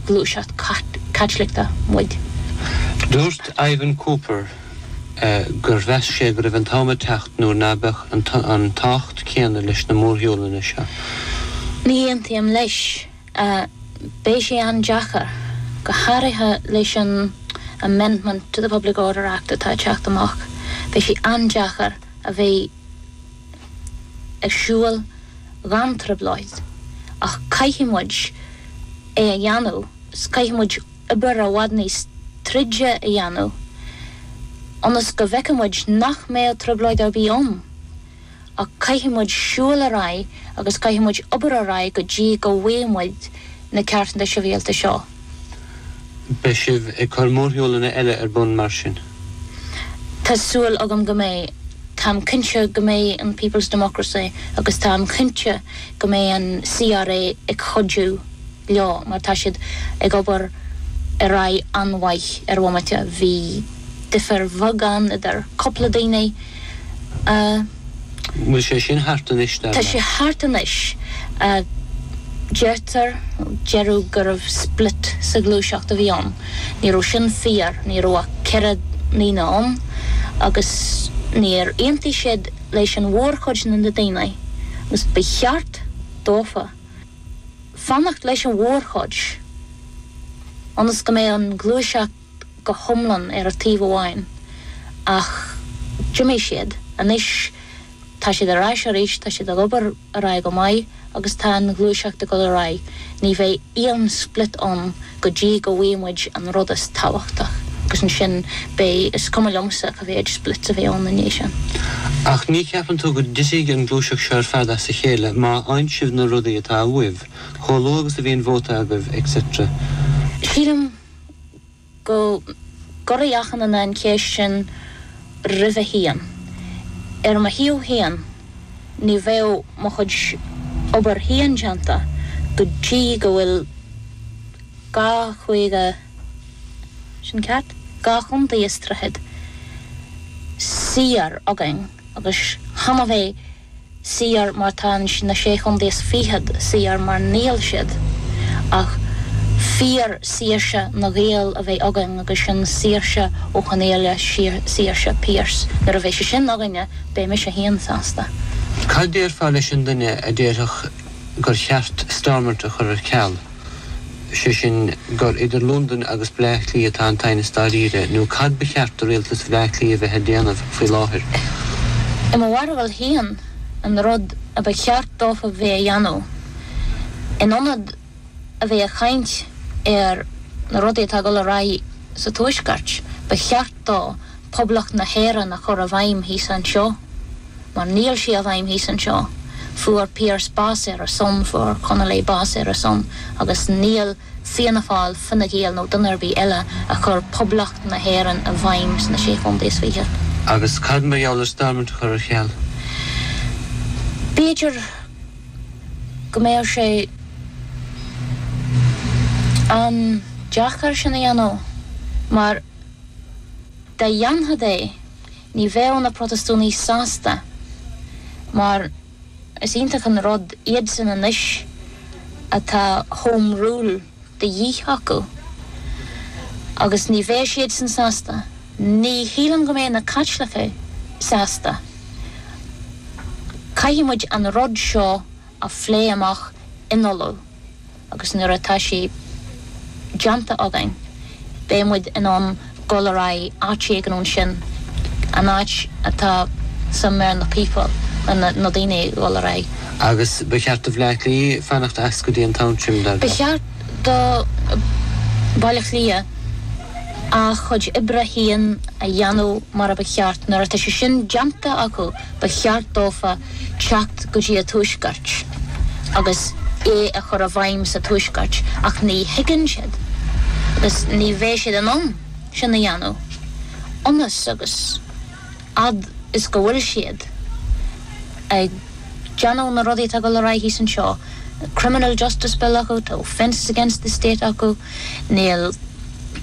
gluaiseacht Caitliceach muid. Dúirt Ivan Cooper gur mheas sé go raibh an t-am ag teacht nuair ná beadh an tábhacht céanna leis na mórshiúlanna seo. Ní aontaím leis. Beidh sé an-deacair, go háirithe leis an amendment to the Public Order Act atá ag teacht amach, beidh sé an-deacair a bheith ag siúl gan trioblóid, ach caithfidh muid é a dhéanamh, caithfidh muid obair i bhfad níos troide a dhéanamh ionas go bhfeicfidh muid nach mbeidh trioblóid ar bith ann, ach caithfidh muid siúl ar aghaidh agus caithfidh muid obair ar aghaidh go dtí go bhfaighidh muid na ceartanna sibhialta seo. Beidh sibh ag cur mórshiúlanna eile ar bun mar sin? Tá súil agam go mbeidh. Táim cinnte go mbeidh an People's Democracy agus táim cinnte go mbeidh an CRA ag cuidiú leo mar tá siad ag obair ar aghaidh an-mhaith ar bhomaite. Bhí difear bheag ann idir cúpla daoine a. An bhfuil sé sin thart anois, dar leat? Tá sé thart anois, deirtear, deireadh gurbh split sa ghluaiseacht a bhí ann. Ní raibh sin fíor, ní raibh ach ceithre ndaoine ann agus níor aontaigh siad leis an mhórchuid de na daoine agus ba cheart dófa fanacht leis an mhórchuid ionas go mbeidh an ghluaiseacht go hiomlán ar an taobh amháin, ach d'imigh siad. Anois tá siad ar ais arís, tá siad ag obair ar aghaidh go maith agus tá an ghluaiseacht ag dul ar aghaidh. Ní bheidh aon split ann go dtí go bhfaighidh muid an rud is tábhachtach agus ansin beidh, is cuma liomsa cá mhéid splits a bheidh ann i ndiaidh sin. Ach ní cheapann tú go dtitfidh an gluaiseacht seo ar fad as a chéile má fhaigheann sibh na rudaí atá uaibh, chomh luath agus a bhíonn vóta agaibh, et cetera? Sílim go gcuirfidh achan duine an cheist sin roimhe féin. Ar mo thaobh féin, ní bheadh mo chuid obair féin déanta go dtí go bhfuil dhá chúige, sin ceart? dhá chontae is tríochad, saor againn agus chan a bheith. saor mar tá na sé chontae is fichead saor mar níl siad ach fíor saoirse na nGael a bheith againn agus sin saoirse Ó Conghaile, saoirse Pearse nuair a bheidh sé sin againne beidh mise féin sásta. Cad déarfá leis an duine a déarfadh gur cheart Stormont a chur ar ceal? is é sin gur idir Londain agus Bleá Cliath atá an t-aighneas dáiríre, nó cad ba cheart do rialtas Bhleá Cliath a bheith ag déanamh faoi láthair? I mo bharúil féin, an rud a ba cheart dófa a bheith a dhéanamh, in ionad a bheith ag caint ar na rudaí atá ag dul ar aghaidh sa Tuaisceart, ba cheart dó Poblacht na hÉireann a chur i bhfeidhm thíos anseo, mar níl sí i bhfeidhm thíos anseo. Fuair Pearse bás ar a son, fuair Connolly bás ar a son, agus níl Fianna Fáil, Fine Gael nó duine ar bith eile ag cur Poblacht na hÉireann i bhfeidhm sna Sé Chontae is Fiche. Agus cad mar gheall ar Stormont a chur ar cheal? B'fhéidir go mbeadh sé an-deacair sin a dhéanamh, mar. Dá ndéanfadh é, ní bheadh na Protastánaigh sásta, mar is iontach an rud iadsan anois atá Home Rule de dhíth acu, agus ní bheadh siadsan sásta, ní shílim go mbeadh na Caitlicigh sásta. Caithfidh muid an rud seo a phlé amach in Uladh agus nuair atá sé déanta againn beidh muid in ann dul ar aghaidh áit éigin ansin, an áit atá sa méar na people, na daoine ag dul ar aghaidh. Agus ba cheart do Bhaile Átha Cliath fanacht as go dtí an t-am sin, dar leat? Ba cheart do Bhaile Átha Cliath a chuid oibre féin a dhéanamh mar a ba cheart nuair atá sé sin déanta acu. ba cheart dófa teacht go dtí a tuaisceart agus é a chur i bhfeidhm sa tuaisceart ach ní thuigeann siad agus ní bheidh siad in ann sin a dhéanamh ionas agus fhad is go bhfuil siad ag déanamh na rudaí atá ag dul ar aghaidh thíos anseo, Criminal Justice Bill acu, tá Offences against the State acu, níl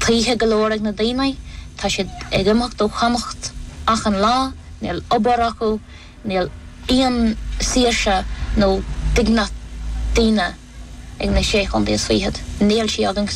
tithe go leor ag na daoine, tá siad ag imeacht ó Chonnacht achan lá. Níl obair acu, níl aon saoirse nó dignit ag daoine ag na sé chontae is fichead, níl sí againn sa